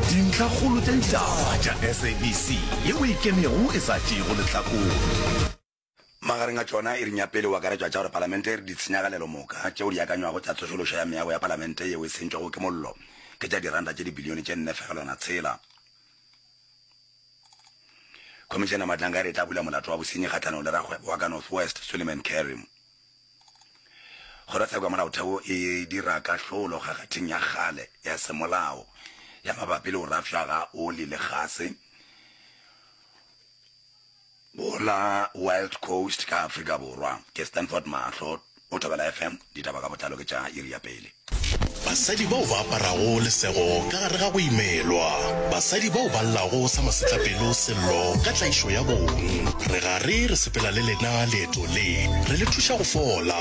Dintlhakgolo tša ditaba tša SABC ye o e kenego e sa tšeego lehlakore. Magareng a tšona iring ya pele o akaretšwa tša gore Palamente e re ditshenyagalelo moka tšeo di akanywago tša tsošološo ya meago ya Palamente yeo e sentšwego ke mollo ke tša diranta tše dibilione tše nne fegelwana tshela. Khomišene ya Matlanga e re e tla bula molato wa bosenyi kgahlanong le rakgwebo wa ka North West, Suleiman Kerim. Kgorotsheko ya Molaotheo e dira kahlolo kgakgathing ya kgale ya semolao ya mabapi le go rafša ga oli le gase go la Wild Coast ka Afrika Borwa. Ke Stanford Mahlo, o thobela FM, ditaba ka botlalo ke tša iri ya pele. Basadi bao ba aparago lesego ka gare ga go imelwa. Basadi bao ba llago sa masetlapelo sello ka tlaišo ya bong. Re gare re sepela le lena leeto le, re le thuša go fola.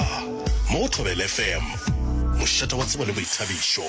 Mo go Thobela FM, mošate wa tsebo le boithabišo.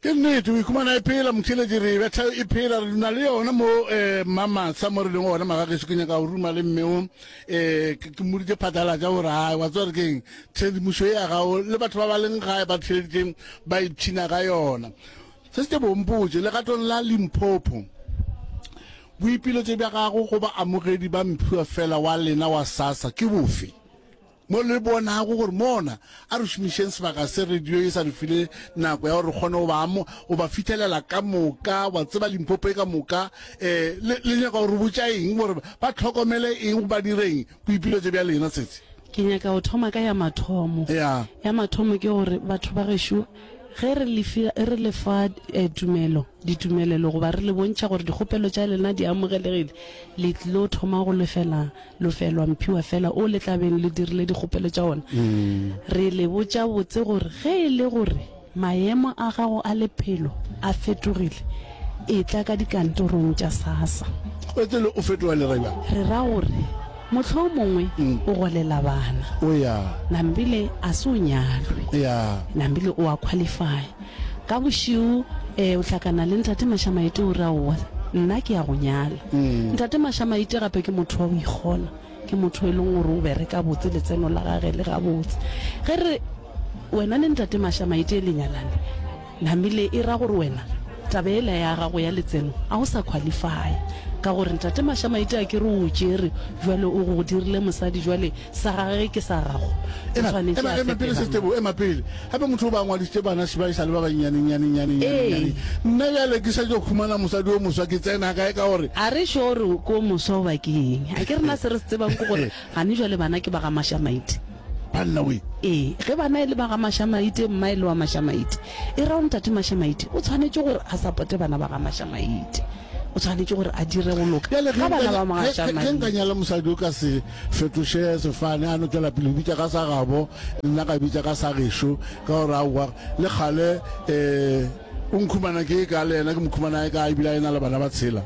Ke nnete, o ikhumana e phela, motheeletši, re e betha e phela, re na le yona mo, eh, Mamatsha, mo re leng gona, magageso. Ke nyaka go ruma le mme o, eh, ke, ke mmoditše phatlalatša gore, hai, wa tseba re keng, tshedimošo ye ya gago, le batho ba ba leng gae ba theeleditše ba ipshina ka yona. Se se tle bo mpotše, legatong la Limpopo, boipiletšo bja gago go baamogedi ba mphiwa fela wa lena wa SASSA ke bofe? Mo le bonago gore mona, a re šomišeng sebaka se radio e sa re file nako ya gore re kgone go ba amo, go ba fithelela ka moka, wa tseba Limpopo e ka moka. Um, le, le nyaka go re botša eng? Gore ba tlhokomele eng, ba dire eng? Boipiletšo bja lena tsetse. Ke nyaka go thoma ka ya mathomo. Ya. Ya mathomo ke gore, batho ba gešo, ge re le fi, re le fa eh, tumelo, ditumelelo, goba re le bontšha gore dikgopelo tša lena di amogelegile, le tlilo thoma go lefela Lofelwa Mphiwa fela o le tlabeng le dirile dikgopelo tša ona. Re le botša botse gore ge e le gore maemo a gago a lephelo a fetogile, etla ka dikantorong tša SASSA. Etele o fetoga lereba. Re ra gore mohlomongwe o golela bana. O ya. Nambile a se o nyalwe. Ya. Nambile o a qualify. Ka bošego e, o hlakana le Ntate Mašamaite o re, Aowa, nna ke ya go nyala. Ntate Mašamaite gape ke motho wa go ikgona, ke motho e leng gore o bereka botse, letseno la gage le gabotse. Ge re re, Wena le Ntate Mašamaite le nyalane, namile e ra gore wena taba yela ya gago ya letseno ga o sa qualify-a, ka gore Ntate Mašamaite a ke re o o tšere bjale o go dirile mosadi, bjale sa gage ke sa gago o tshwanetse a fetela setebo ema pele gape motho o ba ngwadisitse bana ba e sa le ba bannyanenyanenyanenyaneng nna bjale ke setse khumana mosadi o moswa ke tsena kae ka gore a re šo gore o ko moswa o bakeng a ke rena se re se tsebang ke gore gane jwale bana ke ba ga mashamaite banna we ee ge bana e le ba ga mashamaite mma e le wa mashamaite e ra o ntate mashamaite o tshwanetse gore a sapote bana ba ga mashamaite o tshwanetse gore a dire go loka ga bana ba mashamaite mosadi o ka se Fetoše sefane, a no tšwela pele go bitša ka sa gabo, nna ka bitša ka sa gešo, ka gore aowa, le kgale eh, o nkhumana ke e ka le yena, ke mokhumana e ka ebile a e na le bana ba tshela.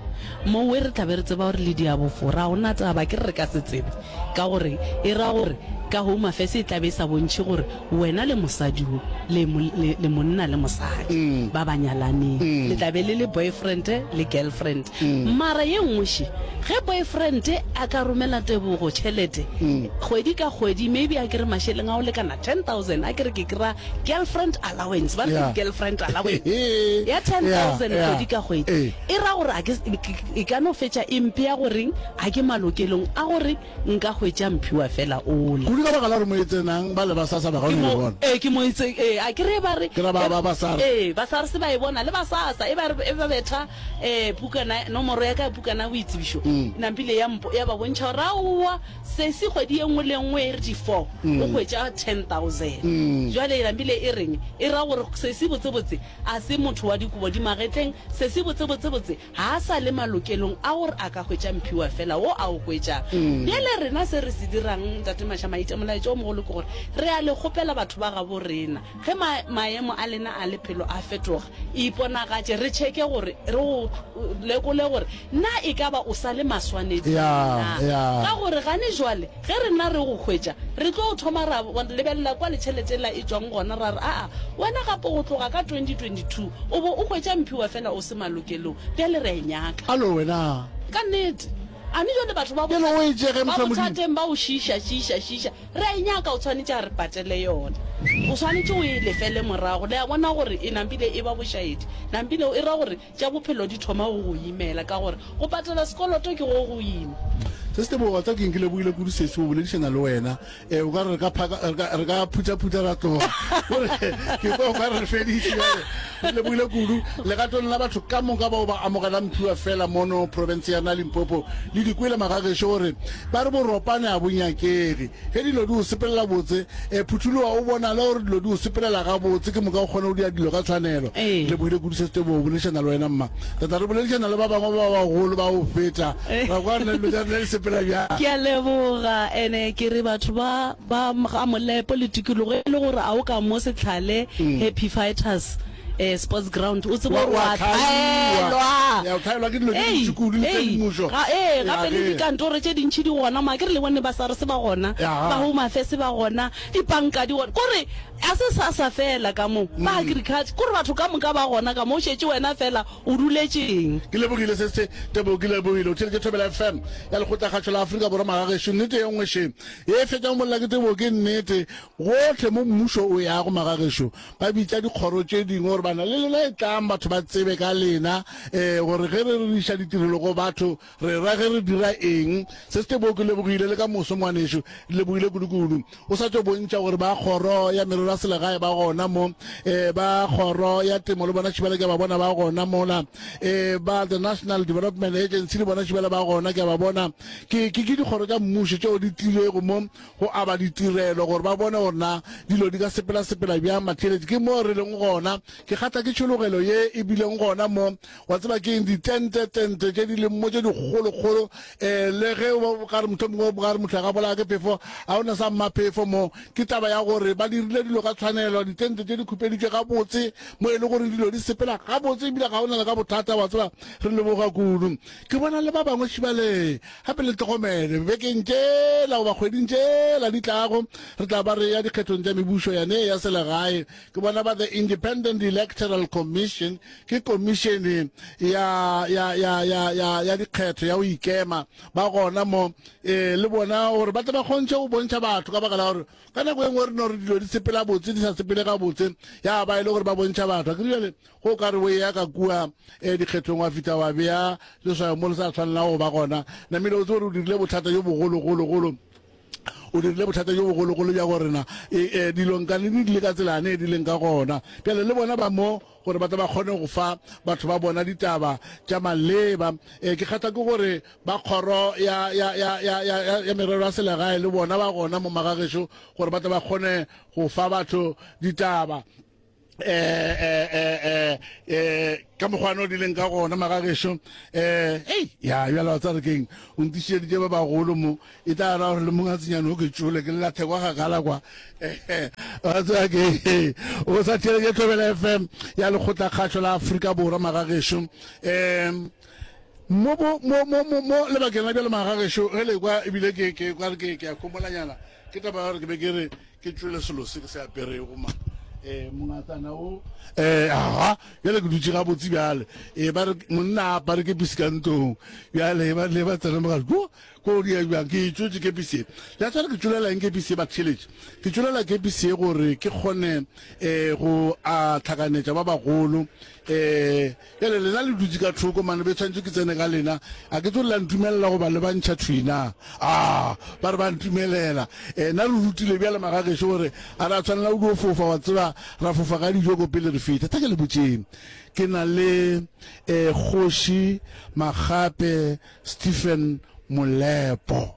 Mowe re tla be re tseba gore le diabofo, ra go na taba, ke re re ka se tsebe, ka gore e ra gore ka Home Affairs e tla be e sa bontšhe gore Wena le mosadi wo, le, le, le monna le mosadi ba ba nyalaneng, le tla be le le boyfriend le girlfriend. Mara ye nngwe še, ge boyfriend a ka romela Tebogo tšhelete kgwedi ka kgwedi, maybe a ke re mašeleng a go lekana ten thousand, a ke re ke kry-a girlfriend allowance, ba re ke girlfriend allowance ya ten thousand kgwedi ka kgwedi, e ra gore a ke, e ka no fetša e mpea gore a ke malokelong a gore. Nka hwetša Mphiwa fela ola. Kudu ka baka la gore mo e tsenang, ba le ba SARS ba kgone go e bona. Ee, ke mo e tse, ee, a kere e ba re, Ke ra ba, ba, ba SARS. ee, ba SARS ba e bona, le ba SASA, e ba re, e ba betha, ee, pukana, nomoro ya ka ya pukana ya boitsebišo, nampile ya mpo, ya ba bontšha gore, aowa, sesi, kgwedi ye nngwe le ye nngwe e re di four, o hwetša ten thousand. Bjale nampile e reng? E ra gore, sesi, botsebotse, a se motho wa dikobo di magetleng, sesi, botsebotsebotse, ga a sa le malokelong a gore a ka hwetša mphiwa fela wo a o hwetšago. Bjale rena se re se dirang, Ntate Mašamaitša, molaetša wo mogolo ke gore re a le kgopela batho ba gabo rena, ge ma, maemo a lena a lephelo a fetoga, iponagatše, re tšheke gore, re go lekole gore na e ka ba o sa le maswaneding na, ka gore gane jwale, Ge re nna re go hwetša, re tlo thoma ra lebelela kwa letšhelete la e tšwang gona, ra re, Aa, wena gape go tloga ka 2022 o bo o hwetša mphiwa fela o se malokelong, bjale re a e nyaka. Alo wena! Ka nnete. A mme bjale batho ba Bjale o e tšee ge, moswa Modimo. bothateng ba go šiiša, šiiša, šiiša, re a e nyaka, o swanetše a re patele yona. O swanetše o e lefele morago. Le a bona gore e nampile e ba bošaedi? Nampile o e ra gore. Tša bophelo di thoma go go imela ka gore go patela sekoloto ke go go ima. Se se tebogo tsa keng ke lebogile kudu sesi go boledišana le wena e o ka re re ka phaka re ka re ka phuthaphutha ra tloga gore ke kwa o ka re fediše jale re lebogile kudu legatong la batho ka moka bao ba amogela mphiwa fela mono province ya na limpopo le dikwele magagešo gore ba re boropane a bonyakege Ge dilo di o sepelela botse, e, phuthologa o bonale gore dilo di o sepelela gabotse, ke moka o kgona go dira dilo ka tshwanelo. Lebohile re kuduša sete bo boledišana le wena mma. Tata re boledišana le ba bangwe ba bagolo ba go feta, ra kwa nna dilo tša rena di sepela bjang. Ke a leboga, ene ke re batho ba ba ga Molepo le tikologo e le gore a o ka mo Setlhale, Happy Fighters. eh, sports ground o tseba gore wa tlhaelwa tlhaelwa ke dilo tse dintši kudu le tse dimušo ee gape le dikantoro tše dintšhi di gona ma ke re le bone ba sare se ba gona ba home affairs ba gona dipanka di gona kore a se sa sa fela ka mo mm. ba agriculture kore batho ka moka ba gona ka mo o šetše wena fela o duletšeng ke lebogile se se tebo ke lebogile o theletše thobela fm ya lekgotlagatšho la aforika borwa magagešo nnete ye nngwe še e fetšang molla ke tebo ke nnete gotlhe mo mmušo o yago magagešo ba bitša dikgoro tše dingwe gore bana le lena e tlang batho ba tsebe ka lena um gore ge re reriša ditirelo go batho re ra ge re dira eng se se tebo ke lebogile le ka moso ngwanešu lebogile kudukudu o sa tšo bontšha gore ba kgoro ya merero ya selegae ba gona mo um ba kgoro ya temo le bona šibala ke ba bona ba gona mola um ba the national development agency le bona šibala ba gona ke ba bona ke dikgoro tša mmušo tšeo di tlilego mo go aba ditirelo gore ba bone gore na dilo di ka sepelasepela bjang matheletše ke moo re leng gona ke kgatla ke tšhologelo ye e bileng gona mo wa tseba ke eng ditentetente tše di leng mo tše dikgolokgolo um le ge ka re motho mongwe ka re motho a ka bolaya ke phefo ga o na sa mmaphefo mo ke taba ya gore ba dirile dilo ka tshwanelo ditente tše di khupeditše gabotse mo e le gore dilo di sepela gabotse ebile ga o na le ka bothata wa tseba re leboga kudu ke bona le ba bangwe šibalee Gape le tlogomele, bibekeng tšela goba kgweding tšela di tlago, re tla ba re ya dikgethong tša mebušo yane ya selegae. Ke bona ba The Independent Electoral Commission, ke komišene ya, ya, ya, ya, ya, ya dikgetho ya go ikema, ba gona mo, e, le bona, gore ba tle ba kgontšhe go bontšha batho, ka baka la gore ka nako e nngwe re no re dilo di sepela botse, di sa sepele gabotse, ya ba e le gore ba bontšha batho. Akere bjale Go ka re o eya ka kua eh, dikgethong wa fihla wa bea leswayo mo le sa tshwanelago go ba gona. Namile o tse gore o dirile bothata jo bogologologolo o dirile bothata jo bogologolo bja gore na e, e, dilong ka lene di le ka tselane e di leng ka gona pele le bona ba mo gore ba tle ba kgone go fa batho ba bona ditaba tša maleba um ke kgatha ke gore ba kgoro ya merero ya selegae le bona ba gona mo magagešo gore ba tle ba kgone go fa batho ditaba eh, eh, eh, eh, eh, ka mokgwana o dileng ka gona magagešo eh, ei ya bjala tsa re keng o ntišeditše ba bagolo mo e tla ra gore le mong a tsenyane o ke tšole ke lelathe kwa gagala kwa Eh, eh, wa tseba ke eh, o sa theleke tlobela fm ya lekgotla kgatlho la aforika borwa magagešo um mo bo- mo- mo- mo- mo lebakeng la bjale magagešo ge le kwa ebile ke- ke kwa re ke ke a komolanyana ke taba ya gore ke be ke re ke tšwele selo se ke se aperego ma eh mongatana o eh aha bjale ke dutse ga botse bjale e ba re monna a apare ke pisi ka ntong bjale e ba le ba tsena mogare ko ko di ya bjang ke tswetse ke pisi e ya tsara ke tšwelela eng ke pisi e ba tšhelete ke tšwelela ke pisi e gore ke kgone eh go a tlhakanetša ba bagolo eh Bjale lena le dutše ka thoko mane, be tshwanetše ke tsene ka lena. A ke tso le la ntumelela goba le bantšha thwi na? A ba re ba ntumelela. E, na re rutile bjale magagešo gore a ra tshwanela go dio fofa, wa tseba, ra fofa ka dijo ko pele re fihla. Tla ke le botšeng, ke na le e, Kgoši Makgape Stephen Molepo.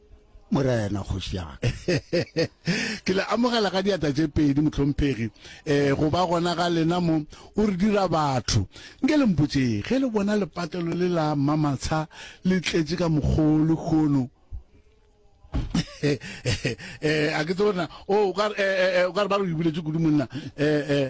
Morena, kgoši ya ka. Ke le amogela ka diata tše pedi, mohlomphegi, um go ba gona ga lena mo. O re dira batho. Nke le mpotše, ge le bona lepatelo le la mmamatsha le tletše ka mokgoo le kgono, um a ke tse o rena, o ka re ba re o ibuletše kudu monna, um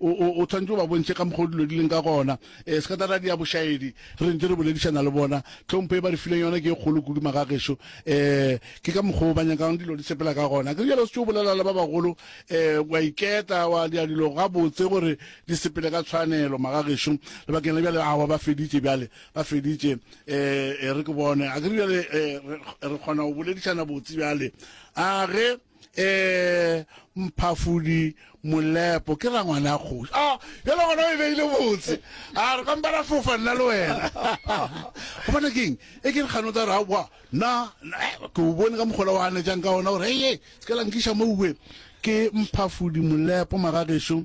o, o, o tshwanetse o ba bontšhe ka mokgwa o dilo di leng ka gona um sekataradi ya bošaedi re ntse re boledišana le bona tlhompho e ba re fileng yona ke e kgolo kudu magagešo um ke ka mokgwa o ba nyakang dilo di sepela ka gona ke jalo se tse o bolela le ba bagolo um wa iketa wa dia dilo gabotse gore di sepele ka tshwanelo magagešo lebakeng la bjale awa ba feditše bjale ba feditše um re ke bone a ke re bjale re kgona go boledišana botse bjale a ge eh mphafudi molepo ke ra ngwana kgoši a ah, yalo gona o e beile botse a ah, re kampa ra fofa nna le wena gobane keng e ke re kgano tsa re aowa na eh, ke o bone ka mokgola wa anetsang ka ona gore eye se ke lankiša mo uwe ke mphafudi molepo magagešo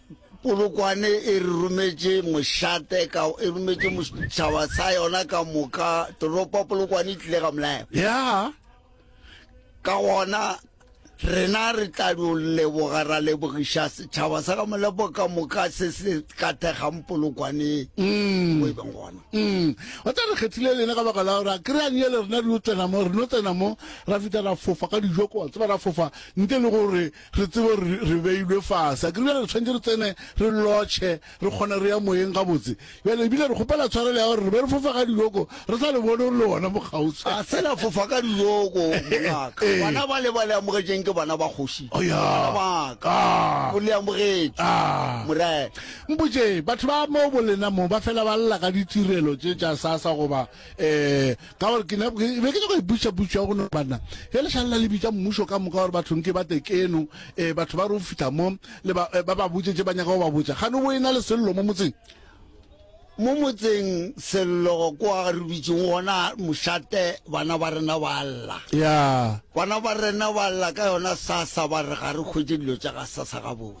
Polokwane e re rometše mošate ka e rometše mošaba sa yona ka moka toropo Polokwane e tlile ga molayo ya ka gona rena re tla no leboga ra lebogiša setšhaba sa ga molepo ka moka se se ka thegang polokwaneng mm. mo e beng gona mm. o tla re kgethile lena ka baka la gore a kry-a nyele rena re no tsena mo re no tsena mo ra fita ra fofa ka dijoko wa tseba ra fofa nte le gore re tsebe gore re beilwe fase. Akere bjale re tshwanetse re tsene re lotšhe, re kgone re ya moyeng gabotse. Bjale ebile re kgopela tshwarelo ya gore re be re fofa ka diyoko, re sa le bone gore le gona mokgauswi. A se la fofa ka diyoko, mongaka. Ee. Bana bale ba le amogetšeng ke bana ba kgoši, ke Aya. bana ba ka. Aa. O le amogetše, Aa. Morena. Mpotšeng, batho ba moo bolena moo ba fela ba lla ka ditirelo tše tša sasa goba? um ka gore ke be ke nyaka iputsa putsa go no banna e le šalela le bitsa mmušo ka moka gore bathong ke ba tekeno um eh, batho ba re o fitlha mo le ba eh, ba botse tse ba nyaka go ba botsa ga no bo e na le sello mo motseng mo motseng sello kwa re bitseng gona mošate bana ba rena ba lla ya bana ba rena ba lla ka yona sasa ba re ga re kgwetse dilo tsa ga sasa gabotse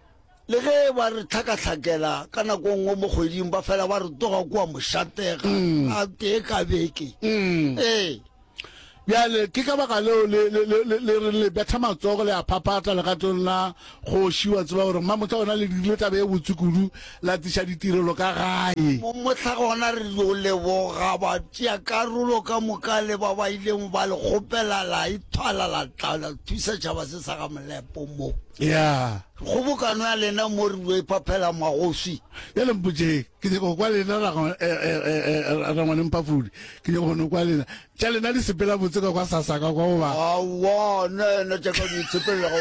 Le ge ba re tlhakatlhakela ka nako nngwe mo kgweding ba fela ba re toga kua mošatega mm. a tee ka beke mm. ee bjale ke ka baka leo le re le betha matsogo le a phaphatla legatong la kgoši wa tseba gore mmamotla ona le dirile tabe e botse kudu la tiša ditirelo ka gae motlha gona re yo leboga ba tšea karolo ka moka le ba ba ileng ba le kgopela la ithwala la tla la thusa tšhaba se sa ga molepo moo Ya. Kgobokano ya lena mo re lo iphaphela magoswi. Ya le mpotše, ke nyaka go kwa lena ra eh, eh, eh, rangwane mpafodi. Ke nyaka go no kwa lena. Tša lena di sepela botse ka kwa sasaka kwa goba. Awa, nna yena tša ka di tsepela go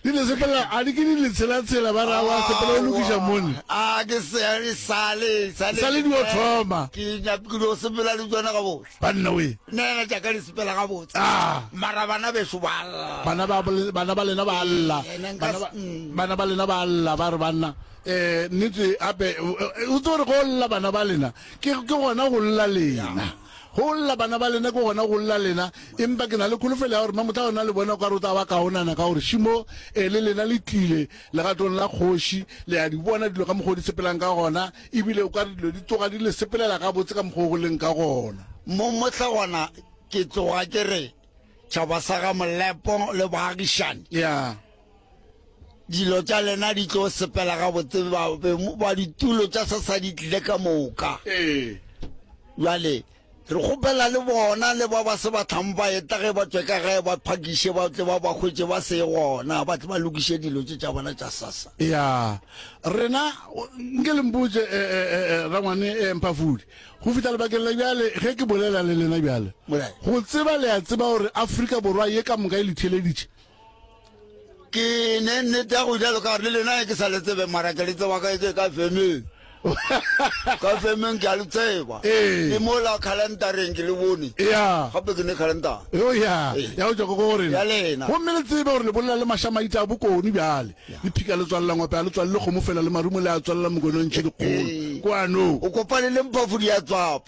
Di le sepela a di ke di le tshela tshela ba ra wa sepela o lokiša mone. A ke se sale sale. Sale di o thoma. Ke nyaka ke lo sepela le tsona ka bohle. Banna we. Nene ja ka le sepela ga botse. Ah. Mara bana be sho ba lla. Bana ba bana ba lena ba lla. Mm. Bana ba lena ba lla ba re banna. Eh nitse ape u tso re go lla bana ba lena. Ke ke gona go lla lena. go lla bana ba lena ke gona go lla lena empa ke na le kholofelo ya gore mamotla ona le bona ka re o tsa ba kaonana ka gore šimo e le lena le tlile legatong la kgoši le ya di bona dilo ka mokgwa o di sepelang ka gona E bile o ka re dilo di tloga di le sepelela gabotse ka mokgwa o go leng ka gona. Mo mohla gona ke tloga ke re tšhaba sa ga Molepo le baagišani. Ya. Dilo tša lena di tlo sepela gabotse ba ba ditulo tša sasa di tlile ka moka. Ee. Jwale. Re kgopela le bona le ba ba se batlang ba eta ge ba tšwe ka gae ba phakiše ba tle ba ba hwetše ba se gona ba tle ba lokiše dilo tše tša bona tša sasa. Ya rena nke le mpotše eh, eh, eh, eh, rangwane eh, Mphafude go fihla lebakeng la bjale ge ke bolela le lena bjale go tseba le a tseba gore Afrika Borwa ye ka moka e le theeleditše ke ne nnete ya go jalo ka gore le lena e ke sa le tsebe mara ke le tseba ka e ke ka femeng ka femeng ke a le tseba ee. le mo la calendareng ke le bone gape ke ne calendar oh, ya go tswa ko go rena ya lena gomme le tsebe gore le bolela le mashamaita a bokone bjale le phika le tswalela ngope a le tswalele kgomo fela le marumo le a tswalela mokonontšhe dikgolo ee. kwano o kopane le mpafodi ya tswapa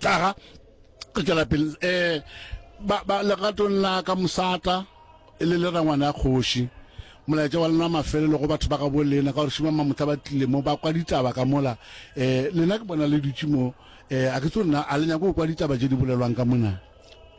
tlaga re tšwela pele um eh, legatong la ka mosata e le le rangwana ya kgoši molaetša wa lena mafelelo go batho ba gabo lena ka gore šima mamotla ba tlile mo ba kwa ditaba ka mola um lena ke bona le dutše mo um a ke tso nna a le nyako go kwa ditaba tše di bolelwang ka mona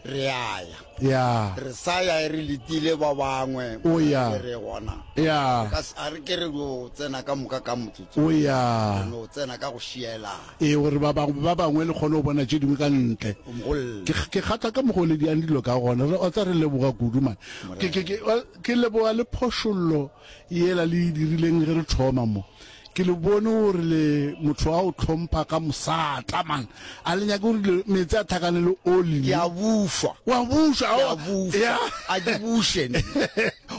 re ya ya ya re sa ya e re letile ba bangwe O ya. e re gona ya Ka se- a re ke re yo tsena ka moka ka motsotso o ya re no tsena ka go šielana e gore ba bangwe ba bangwe le kgone go bona tše dingwe ka ntle mogolle ke ke kgatha ka mogo le diang dilo ka gona re otsa re leboga kudu man ke ke ke wa- ke leboga le phošollo Yela le e dirileng ge re thoma mo. Ke le bone gore le motho wa go hlompha ka mosata, man. A le nyake gore dilo, meetse a tlhakane le oli? Ke a bušwa. O a bušwa? Ke a bušwa. Ya. A ke buše nna?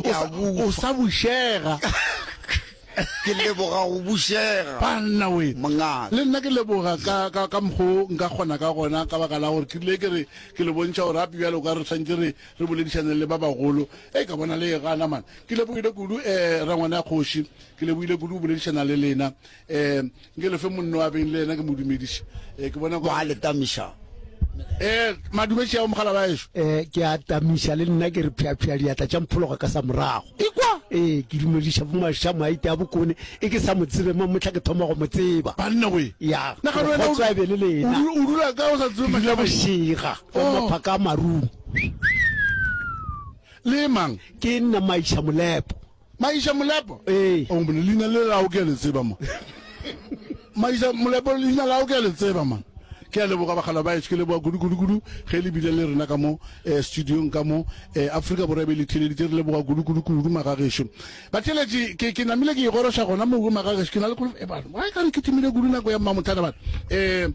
Ke a bušwa. O sa bušega. Ke leboga go bušega. Banna we. Mongaka. Le nna ke leboga ka, ka, ka mokgwa o nka kgona ka gona ka baka la gore ke rile ke re ke le bontšha gore gape bjale o ka re swantše re, re boledišaneng le ba bagolo e ka bona le ga namana ke lebogile kudu um eh, rangwana ya kgoši ke lebogile kudu o boledišana le lena um eh, nke lefe monno wa beng le ena ke mo dumediša um eh, ke bona kwa le tamiša um madumeši ya mogala ba ešo um ke a tamiša le nna ke re phyaphya diatla tša mphologa ka sa morago ikwa ee ke dumediša bomaša maite a bokone e ke sa mo tsebe ma motlha ke thoma go mo tseba banna we ya Nagana wena o- kgotso a be le lena o dula ka o sa tsebe ke dula mašaba bošega o mopha ka marung le mang ke nna maisha molepo maisha molepo ee o mone leina le lago ke a le tseba mo maisha molepo leina lago ke a le tseba man ke a leboga bagala ba eške leboga kudu-kudu-kudu ge le bile le rena ka mo um studiong ka mo um afrika borwa be le theleditse re leboga kudu-kudu-kudu magagešo batheletši ke namile ke igoroša gona mogo magagešo ke na le kolofa e bana wa e kare ke thimile kudu nako ya mmamothana bana um